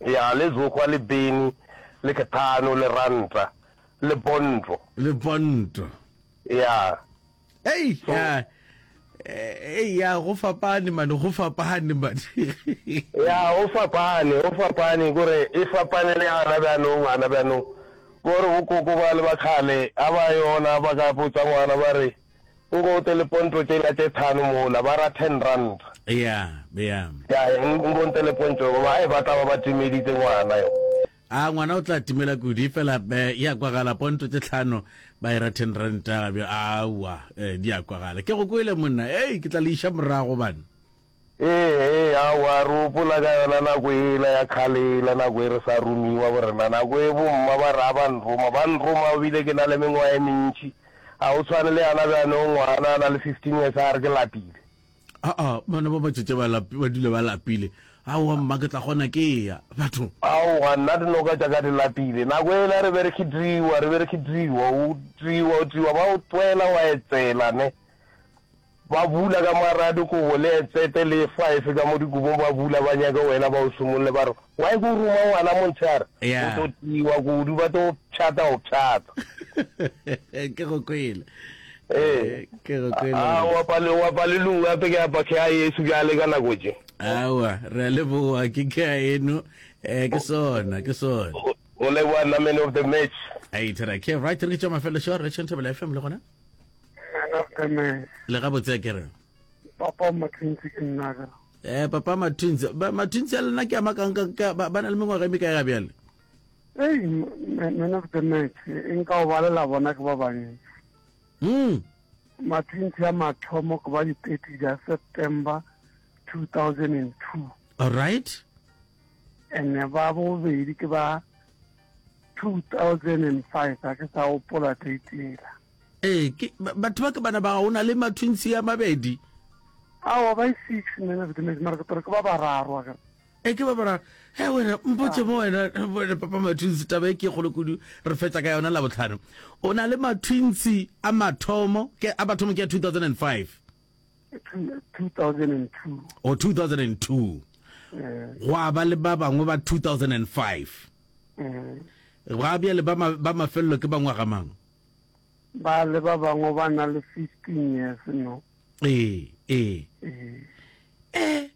Ya Lezokgwa le Beni le Kethano le Ranta le Bonto. Le Bonto. Ya. Ei ya Ei ya go fapane mane go fapane mane. Ya go fapane go fapane gore e fapane le ana bjanong ana bjanong gore bokoko ba le ba kgale ga ba yona ba ka botsa ngwana ba re. O go te lepontšo tše la tše thano mola, ba ra ten rand. Eya, eya. Ya, ya, o go te lepontšo, goba ai, ba tla ba ba timeditše ngwana yo. A ngwana o tla timela kudi, fela e, e a kwagala, pontšo tše tlhano, ba e ra ten rand, bjo, aowa, e, di a kwagala. Ke go kwele, monna, ei, ke tla le iša morago, bana. Ee, aowa, re gopola ka yona nako yela ya kgale yela, nako e re sa romiwa go rena, nako e bomma ba re ga ba nroma, ba nroma ebile ke na le mengwaga e mentši. Ga go tshwane le yana bjanong, ngwana a na le fifteen years a re ke lapile. Aa, bana ba matšatši ba lapi, ba dula ba lapile. Aowa mma, ke tla kgona ke eya. Batho. Aowa, nna dinoka tša ka di lapile. Nako yela re be re khitriwa, re be re khitriwa, o triwa, o triwa, ba o twela, wa etsela, ne. Ba bula ka maradu kobo le etsete le efa efe ka mo dikobong ba bula ba nyake wena ba o sumolole ba re why ko ruma ngwana montshare o to tiwa kudu ba to pshata go pshata ke go kwele ee ke go kwele a wa pale wa pale lu wa pe ke apa ke a yesu ja le ka nako je awa re le boa ke ke a eno eh ke sona ke sona o le wa na man of the match ai thera ke right re ke tšwa mafelo shore re tšhentšha bela fm le gona le ga botse ke re papa mathunzi ke nna ka eh papa mathunzi ba mathunzi a lena ke ama kang ka ba na le mengwaga e me ka ya bjale hey man of the match in ka o balela bona ke ba bangwe mm mathunzi a mathomo go ba di 30 ja September 2002 all right and ba bobedi ke ba 2005 a ke sa gopola date ela ee ke batho ba ke bana ba o na le mathwinsi ya mabedi awa ba six nne ne sedimedi mara ke tore ke ba bararo a e ke ba bararo he wena mpotse ah. mo wena wena papa mathwinsi taba e ke kgolo kudu re fetsa ka yona la botlhano o na le mathwinsi a mathomo ke a bathomo ke ya 2005 2002 o 2002 gwa ba le ba bangwe ba 2005 gwa bjale ba ma- ba mafelelo ke bangwaga mang ba le ba bangwe ba na le 15 years no ee ee ee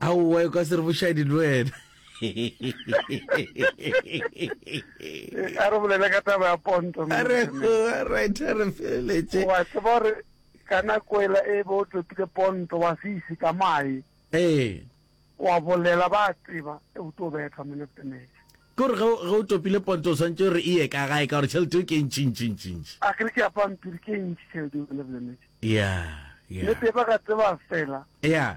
Aowa e ka se re bošadi le wena. A re bolele ka taba ya ponto. A re right a re feleletse. Wa tseba gore ka nako ela e be o topile ponto wa se ise ka mae. Ee. Wa bolela ba tseba e o tlo betha man of the match. Ke gore ge o topile ponto o swantse re eye ka gae ka gore tšhelete o ke ntši ntši ntši ntši. A kere ke ya pampiri ke ntši tšhelete man of the match. Yeah. Yeah. Le teba ka tseba fela. Yeah.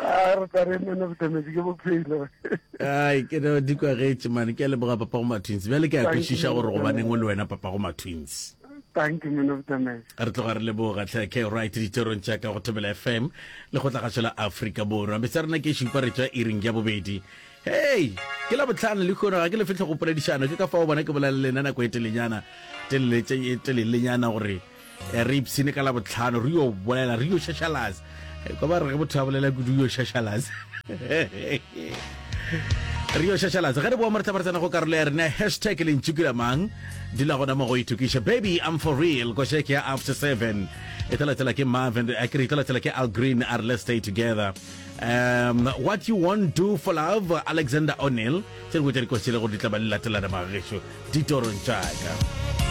Ah, re tla re man of the match ke bophelo. Ai, ke no di kwa getse man, ke a leboga papa go matwins. Bjale ke a kwešiša gore go baneng o le wena papa go matwins. Thank you man of the match. Re tloga re leboga tlhe ke right diterong tša ka go thobela FM le go tlagatšo la Afrika Borwa. Metse rena ke šupa re tšwa iring ya bobedi. Hey, ke la botlhano le kgono ga ke le fitlhe go poledišano ke ka fao bona ke bolela lena nako e telenyana telele e telelenyana gore Eh, re ipsene ka labotlhano re yo bolela re yo shashalase eh, kwa ba re ge botho a bolela kudu yo shashalase re yo shashalase ge re boa mo re tla ba re tsena go karolo ya rena hashtag le ntšukula mang dula gona mo go itokiša baby i'm for real ko shake ya after seven e tla latela ke marvin a kere e tla latela ke al green a re let's stay together um, what you won't do for love alexander o'neil se re botsa dikosele gore di tla ba le latelana magešo ditorong tšaka